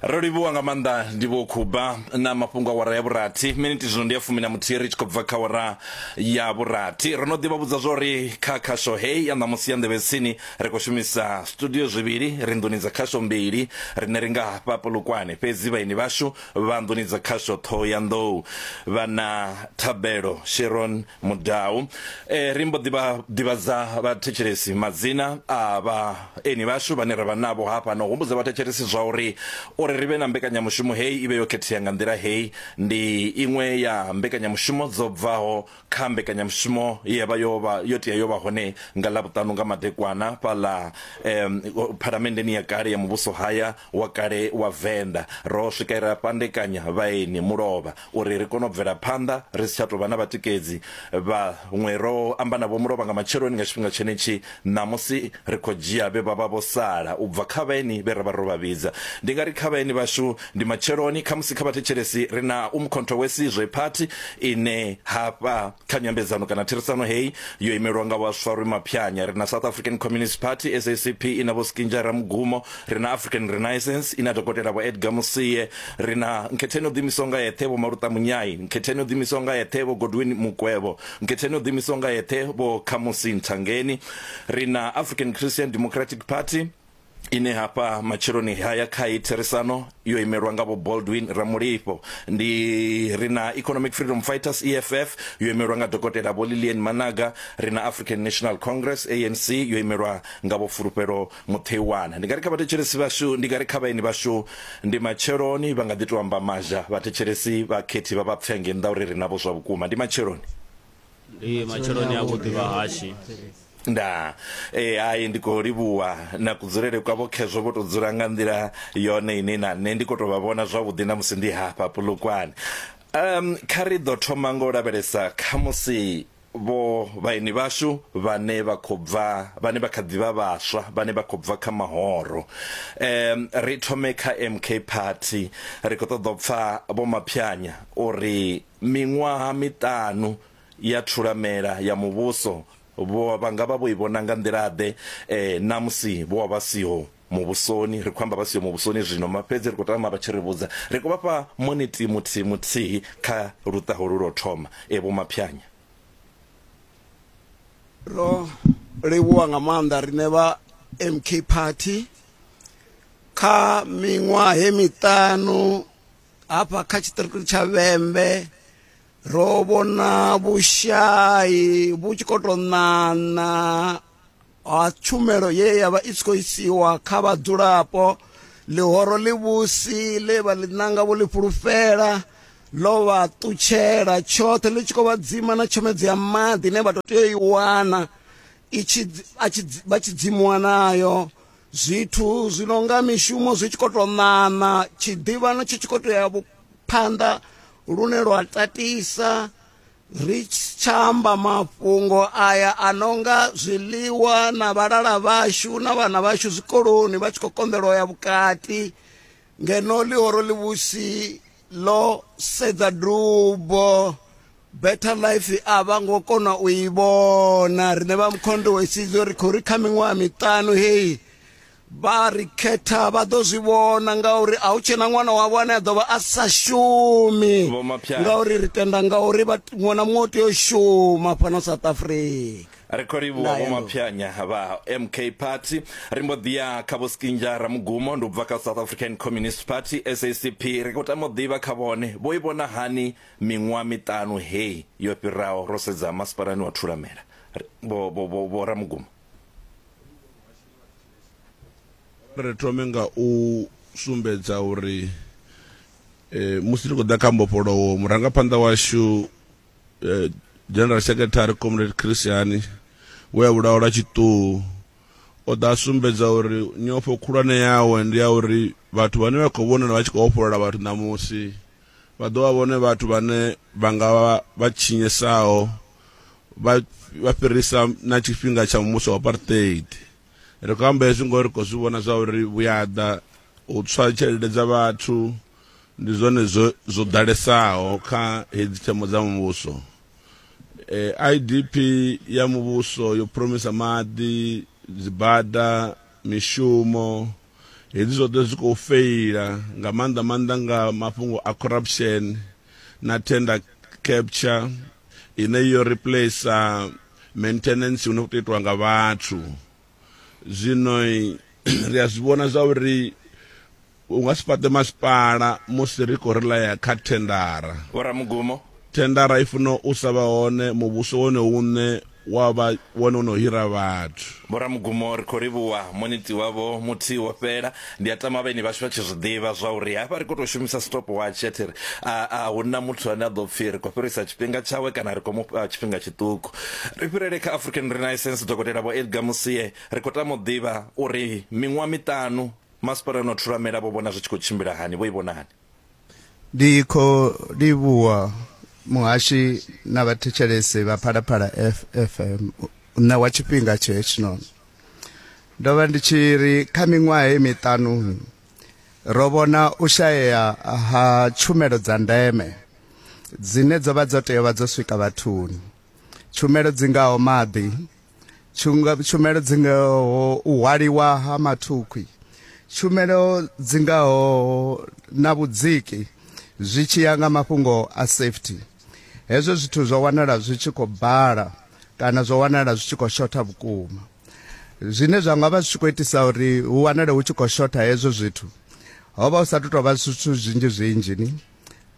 ro livhuwa nga maanḓa ndi vho khuba na mafhungo a wara ya vhurathi miniti zwino ndi ya fumi na muthihi ri tshi khou bva kha wara ya vhurathi ro no ḓivha vhudza zwa uri kha khasho heyi ya ṋamusi ya nḓevhetsini ri khou shumisa studio zwivhili ri nḓuni dza khasho mbili rine ri nga hafha polokwane fhedzi vhaini vhashu vha nḓuni dza khasho ṱhoho ya nḓou vha na thabelo sheron Mudau. E, ri mbo ḓi vha ḓivhadza vhathetshelesi madzina a vhaeni vhashu vhane ra vha navho hafha na u humbudza vhathetshelesi zwa uri uri ri vhe na mbekanyamushumo heyi i vhe yo khethea nga nḓila heyi ndi iṅwe ya mbekanyamushumo dzo bvaho kha mbekanyamushumo ye ya vha yo vha yo tea yo vha hone nga Ḽavhuṱanu nga madekwana fhaḽa eh, phalamenndeni ya kale ya muvhuso haya wa kale wa Venḓa. Ro swika ra fhandekanya vhaeni mulovha uri ri kone u bvela phanḓa ri si tsha tou vha na vhatikedzi. Vhaṅwe ro amba navho mulovha nga matsheloni nga tshifhinga tshenetshi ṋamusi ri khou dzhia vhe vha vha vho sala u bva kha vhaeni vhe ra vha ro vha vhidza. Ndi nga ri kha vhaeni vhashu ndi matsheloni, khamusi kha vhathetshelesi ri na Umkhonto Wesizwe Party ine hafha. kha nyambedzano kana therisano heyi yo imelwa nga vhaswa rwi maphyanya ri na south african communist party sacp i na vho skinja ramugumo ri na african renaissance i na dokotela vho edgar musie ri na nkhetheni o ḓiimisaho nga yeṱhe vho maluta munyai nkhetheni o ḓiimisaho nga yeṱhe vho godwin mukwevho nkhetheni o ḓiimisaho nga yeṱhe vho khamusi nthangeni ri na african christian democratic party ine hafha matsheloni haya kha hei therisano yo imelwa nga vho baldwin ramulifho ndi ri na economic freedom fighters eff yo imelwa nga dokotela vho lilian managa ri na african national congress anc yo imelwa nga vho fulufhelo mutheiwana ndi nga ri kha vhathetshelesi vhashu ndi nga ri kha vhaeni vhashu ndi matsheloni vha nga ḓi to amba mazha vhathetshelesi vhakhethi vha vha pfenge nnḓa uri ri navho zwa vhukuma ndi matsheloni ndi matsheloni a vhuḓi vhahashi nda e hai ndi khou livhuwa na kudzulele kwavho khezwo vho tou dzula nga nḓila yone ine na nṋe ndi khou tou vha vhona zwavhuḓi na musi ndi hafha pulukwane um kha ri ḓo thoma nga u lavhelesa kha musi vho vhaeni vhashu vhane vha khou bva vhane vha kha ḓivha vhaswa vhane vha khou bva kha mahoro um ri thome kha MK party ri khou ṱoḓa u pfha vho maphyanya uri Miṅwaha miṱanu ya thulamela ya muvhuso vho vha nga vha vho i vhona nga nḓila-ḓe na musi vho vha vha siho muvhusoni? Ri khou amba vha siho muvhusoni zwino, fhedzi ri khou tama vha tshi ri vhudza. Ri khou vha fha monithi muthihi muthihi kha luṱa holu lwa u thoma, Vho Maphiyanya. Ro livhuwa nga maanḓa riṋe vha MK Party kha miṅwahe miṱanu hafha kha tshiṱiriki tsha vhembe ro vhona vhushai vhu tshi khou tou ṋaṋa ha tshumelo ye ya vha i tshi khou isiwa kha vhadzulapo ḽihoro ḽivhusi ḽe vha ḽi ṋanga vho ḽi fhulufhela ḽo vha ṱutshela tshoṱhe ḽi tshi khou vha dzima na tshomedzo ya maḓi ine vha tou tea u i wana vha tshi dzimuwa nayo Zwithu zwi no nga mishumo zwi tshi khou tou ṋaṋa, tshiḓivhano tshi tshi khou tou ya phanḓa lune lwa tatisa, ri tsha amba mafhungo aya a no nga zwiḽiwa na vhalala vhashu na vhana vhashu zwikoloni vha tshi khou konḓelwa u ya vhukati ngeno ḽihoro ḽivhusi. ḽo sedza dubo better life a vha ngo kona u i vhona riṋe vha mukhondo wa isidzo ri khou ri kha miṅwaha miṱanu heyi vha ri khetha vha ḓo zwi vhona ngauri a hu tshena ṅwana wavho ane a ḓo vha a sa shumi ngauri ri tenda ngauri ṅwana muṅwe u tea u shuma fhano south africa ri khou livhuwa vho maphyanya vha mk party ri mbo ḓi ya kha vho skinja ramugumo ndi u bva kha south african communist party sacp ri khou tama u ḓivha kha vhone vho i vhona hani miṅwaha miṱanu heyi yo fhiraho ro sedza masipalani wa thulamela vho- vho- vho- vho ramugumo ri thome nga u sumbedza uri eh, musi ri khou ḓa kha mbofholowo murangaphanḓa washu eh, general secretary comrade christiani we a vhulawa lwa tshiṱuhu o ḓa sumbedza uri nyofho khulwane yawe ndi ya uri vhathu vhane vha khou vhonala vha tshi khou ofholola vhathu ṋamusi vha ḓo vha vhone vhathu vhane vha nga vha vha tshinyesaho vha fhirisa na tshifhinga tsha muvhuso wa apartheid ri khou amba hezwi ngori ri khou zwi vhona zwa uri vhuyaḓa u tswa tshelede dza vhathu ndi zwone zwo zwo ḓalesaho kha hedzi themo dza muvhuso eh, idp ya muvhuso yo promisa maḓi dzibada mishumo hedzi zwoṱhe zwi khou feila nga maanḓa maanḓa nga mafhungo a corruption na tender capture ine yo replacer maintenance hu no khou tou itiwa nga vhathu zwino ri a zwi vhona zwa uri u nga si fhaṱe masipala musi ri khou rilaya kha thendara vhoramugumo thendara i funa u sa vha hone muvhuso wone une wa vha wone u no hira vhathu vhoramugumo ri khou livhuwa moniti wavho muthihi wo fhela Ndi a tama vheni vhashu vha tshi zwi ḓivha zwa uri hafha ri khou tou shumisa stopwatch ya thiri, a, a hu na muthu ane a ḓo pfi ri khou fhirisa tshifhinga tshawe kana ri khou mu fha tshifhinga tshiṱuku. Ri fhirele kha African Renaissance, Dokotela Vho Edgar Musie. Ri khou tama u ḓivha uri miṅwaha miṱanu Masipala no Thulamela vho vhona zwi tshi khou tshimbila hani, vho i vhona hani? ndi khou livhuwa muhashi na vhathetshelesi vha phalaphala fm u ṋewa tshifhinga tshe hetshinoni ndo vha ndi tshi ri kha miṅwaha ye miṱanu ro vhona u shayea ha tshumelo dza ndeme dzine dzo vha dzo tea vha dzo swika vhathuni tshumelo dzi ngaho maḓi tshumelo dzi ngaho u hwaliwa ha mathukhwi tshumelo dzi ngaho na vhudziki zwi tshi ya nga mafhungo a safety hezwo zwithu zwo wanala zwi tshi khou bala kana zwo wanala zwi tshi khou shotha vhukuma zwine zwa nga vha zwi tshi khou itisa uri hu wanale hu tshi khou shotha hezwo zwithu ho vha hu sa tou vha zwithu zwinzhi zwinzhi ni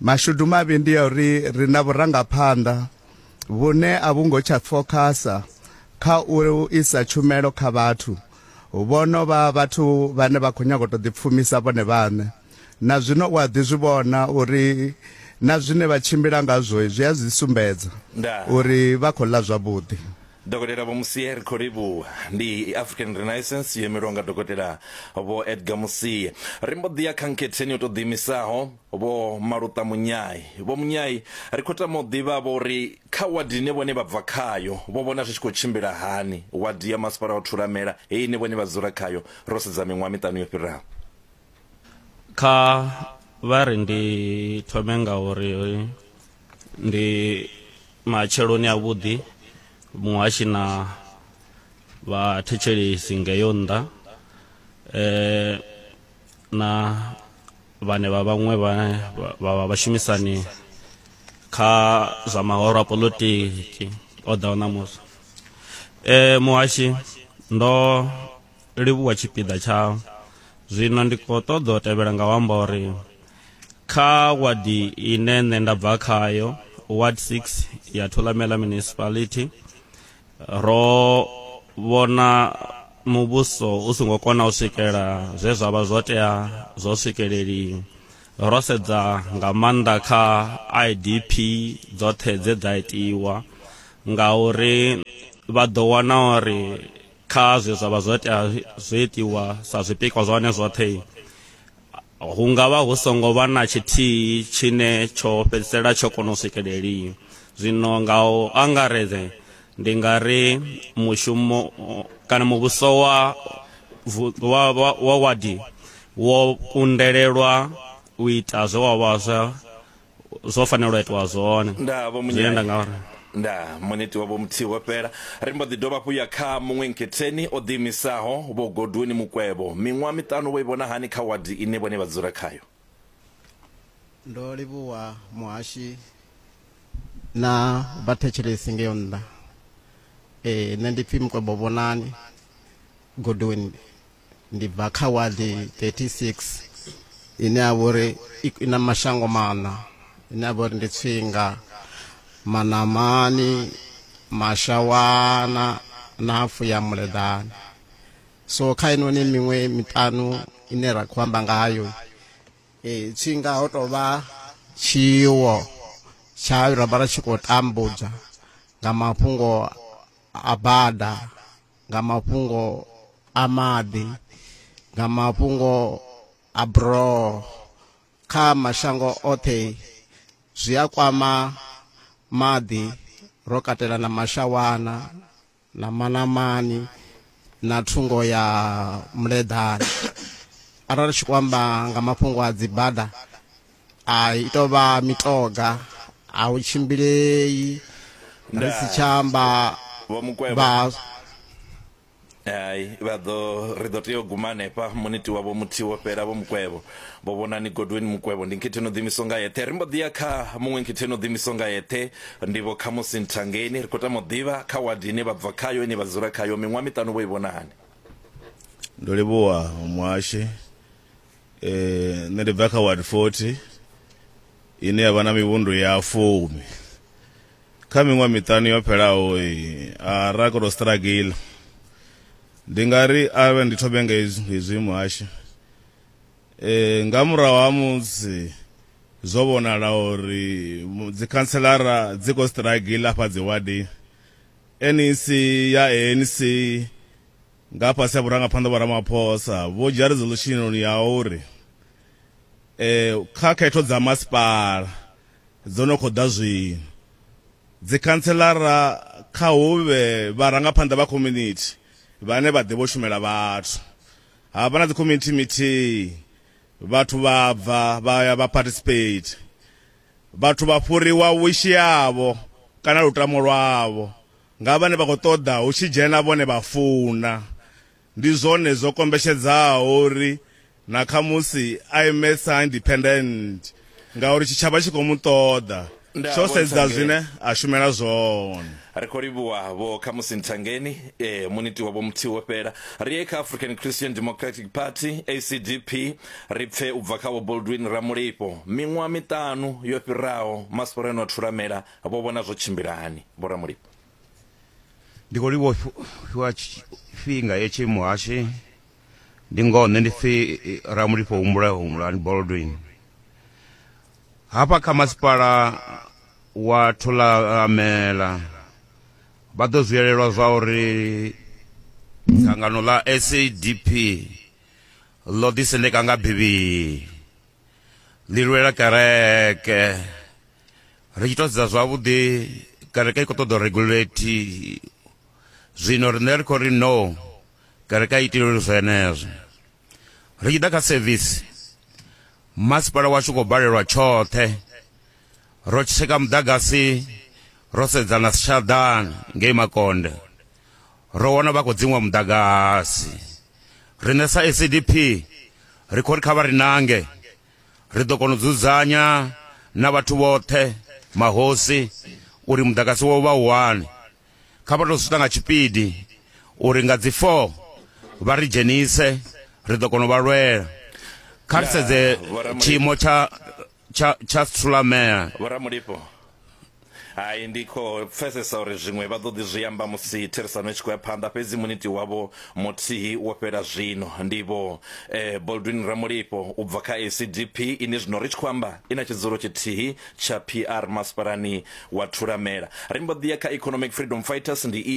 mashudu mavhi ndi ya uri ri na vhurangaphanḓa vhune a vhu ngo tsha fokhasa kha u isa tshumelo kha vhathu vho no vha vhathu vhane vha khou nyaga u tou ḓipfumisa vhone vhaṋe na zwino u a ḓi zwi vhona uri na zwine vha tshimbila ngazwo zwi a zwi sumbedza uri vha khou ḽa zwavhuḓi dokotela vho musie ri khou livhuwa ndi african renaissance yo imelwaho nga dokotela vho edgar musie ri mbo ḓi ya kha nkhetheni yo tou ḓiimisaho vho maluṱa munyai vho munyai ri khou tama u ḓivha vho uri kha wadi ine vhone vha bva khayo vho vhona zwi tshi khou tshimbila hani wadi ya masipala wa thulamela heyi ine vhone vha dzula khayo ro sedza miṅwaha miṱanu yo fhiraho kha vha ri ndi thome nga uri ndi matsheloni a vhuḓi muhashi na vhathetshelesi ngeyo nnḓa eh na vhane vha vhaṅwe vhane vha- vha vha vhashumisani kha zwa mahoro a polotiki o ḓaho ṋamusi eh muhashi ndo livhuwa tshipiḓa tsha zwino ndi khou ṱoḓa u tevhela nga u amba uri kha wadi ine nṋe nda bva khayo ward 6 ya thulamela municipality ro vhona muvhuso u songo kona u swikela zwe zwa vha zwo tea zwo swikeleliwa ro sedza nga maanḓa kha idp dzoṱhe dze dza itiwa ngauri vha ḓo wana uri kha zwe zwa vha zwo tea zwo itiwa sa zwipikwa zwa hone zwoṱhe hu nga vha hu songo vha na tshithihi tshine tsho fhedzisela tsho kona u swikeleliwa zwino nga u angaredze ndi nga ri mushumo kana muvhuso wa vu- wa wa- wa wadi wo kundelelwa u ita zwe wa vha zwa zwo fanela u itiwa zwone nda vho zwine nda munyanya nga uri nda muniti wavho muthihi wo fhela ri mbo ḓi dovha hafhu ya kha muṅwe nketheni o ḓiimisaho vho godwoni mukwevho miṅwaha miṱanu vho i vhona hani kha wadi ine vhone vha dzula khayo Ndo livhuwa muhashi na vhathetshelesi ngeyo nnḓa. Ee, nṋe ndi pfi Mukwevho Vhonani Godwin. ndi bva kha wadi 36 ine ya vhori i na mashango maṋa ine ya vhori ndi tswinga manamani mashawana na hafu ya muleḓani so kha inoni miṅwe miṱanu ine ra khou amba ngayo e, tswinga ho tou vha tshiwo tsha ra vha ra tshi khou tambudzwa nga mafhungo a bada nga mafhungo a maḓi nga mafhungo a buroho kha mashango oṱhe zwi a kwama maḓi ro katela na mashawana na manamani na thungo ya muleḓane arali tshi kwamba nga mafhungo a dzibada a i tou vha mitoga a hu tshimbilei ri si tsha amba vho mukwevho vha hai vha ḓo ri ḓo tea u guma hanefha muniti wavho muthihi wo fhela vho mukwevho vho vhonani godweni mukwevho ndi nkhithi no ḓimiso nga yeṱhe ri mbo ḓi ya kha muṅwe nkhithi no ḓimiso nga yeṱhe ndivho khamusi nthangeni ri khou tama u ḓivha kha wadi ine vha bva khayo ine vha dzula khayo miṅwaha miṱanu vho i vhona hani ndo livhuwa muhashe eh nṋe ndi bva kha ward 40 ine ya vha na mivhundu ya fumi kha miṅwe miṱani yo fhelaho a ra koto struggle ndi nga ri avhe ndi thobe nga hezwi muhasho eh nga murahu ha musi zwo vhonala uri dzikhanselara dzi khou struggle afha dziwadi nec ya anc nga fhasi ha vhurangaphanḓa vho ramaphosa vho dzhia resolution ya uri eh kha khetho dza masipala dzo no khou ḓa zwino dzikhanselara kha hu vhe vharangaphanḓa vha community vhane vha ḓivha u shumela vhathu ha vha na dzi community meeting vhathu vha bva vha ya vha participate vhathu vha fhuriwa wishi yavho kana lutamo lwavho nga vhane vha khou ṱoḓa hu tshi dzhena vhone vha funa. Ndi zwone zwo kombetshedzaho uri na khamusi a ime sa independent ngauri tshitshavha tshi khou mu ṱoḓa tsho sedza zwine a shumela zwone. Ri khou livhuwa vho Khamusi Nthangeni, e, muniti wa vho Muthihi wo fhela. Ri ye kha African Christian Democratic Party, ACDP, ri pfe u bva kha vho Boldwin Ramulifho. Miṅwaha miṱanu yo fhiraho, Masipala ane wa thulamela Vho vhona zwo tshimbila hani, Vho Ramulilo? Ndi khou livhuwa u fhiwa tshifhinga hetshi muhashi. Ndi ngoho nṋe ndi pfi Ramulifho Humbula Humbulani Baldwin. Hafha kha masipala wa Thulamela vha ḓo zwiyelelwa zwa uri dzangano ḽa SADP ḽo ḓisendeka nga bivhili, ḽi lwela kereke. ri tshi tou sedza zwavhuḓi kereke i khou ṱoḓa regulate zwino riṋe ri khou ri no kereke a itileli zwenezwo ri tshi ḓa kha sevisi masipala washu khou balelwa tshoṱhe ro tsheka muḓagasi ro sedzana si tshaḓana ngei makonde ro wana vha khou dziṅwa muḓagasi riṋe sa ecdp ri khou ri kha vha ri nange ri ḓo kona u dzudzanya na vhathu vhoṱhe mahosi uri muḓagasi wo vha uhane kha vha tou swita nga tshipidi uri nga dzi 4 vha ri dzhenise ri ḓo kona u vha lwela kha ri sedze tshiimo tsha tsha tsha sulamea hai ndi khou pfesesa uri zwiṅwe vha ḓo ḓi zwi amba musi therisano i tshi khou ya phanḓa fhedzi muniti wavho muthihi wo fhela zwino ndi vho eh, boldwin ramulifho u bva kha acdp ine zwino ri tshi khou amba i na tshidzulo tshithihi tsha pr masipalani wa thulamela ri mbo ḓi ya kha economic freedom fighters ndi